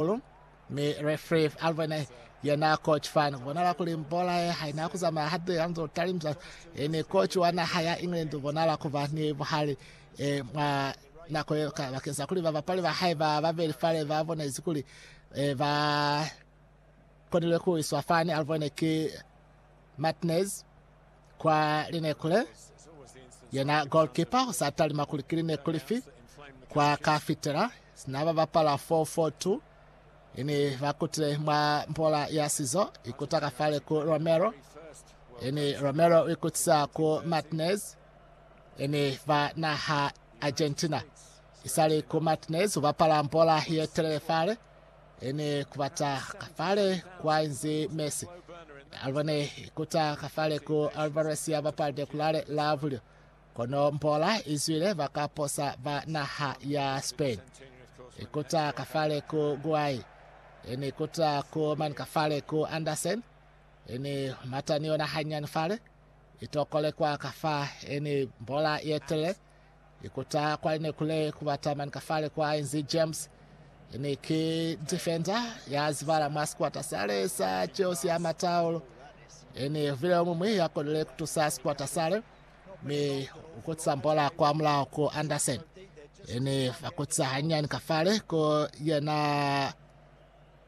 Hahulu, mi Refree Alvene ye na koci fani ku bonala kuli mbola ye haina ku zamaya hande ya nzo talimisa e ni koci wa naha ya England u bonala ku ba ni buhali e mwa nako ye ka bakeng sa kuli babapali ba hae ba babeli fale ba bonezi kuli e ba konile ku iswa fani. Alvene ki Martinez. kwa lineku le, yena goalkeeper ho sa talima kuli ki lineku lifi kwa ka fitela sina ba bapala 4-4-2 ini ba kutile mwa mbola ya sizo ikuta ka fale ku Romero ini Romero o ikutisa ku Martinez ini ba naha Argentina isali ku Martinez ho bapala mbola ye telele fale Ene kubata kafale kwa inzi Messi. Albane ikuta kafale ku Alvarez ya bapalde kulale la bulyo. Kono mbola izwile bakaposa ba naha ya Spain. Ikuta kafale ku Guai. Ene ikuta ku mani kafale ku Andersen. Ene mata ni yona hanyani fale. Itokole kwa kafa ene mbola yetele. Ikuta kwa ne kule kubata mani kafale kwa inzi James ene ki defender ya zibala mwa sikwata sale sa Chelsea ya mataolo ene vile mumwi ya konile kutusa sikwata sale mi ukutisa mbola kwa mulao ku Anderson ene vakutisa hanyani kafale ko yena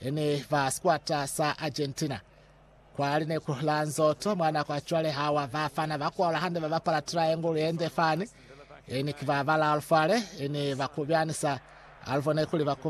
E ne ba sikwata sa Argentina. Kwa lineku la nzoto mwa nako ya cwale ha wa ba fana ba kwaula hande ba bapala triangle ye nde fani. E ne ki ba balaalu fale, e ne ba kubyani sa alvo ne kuli ba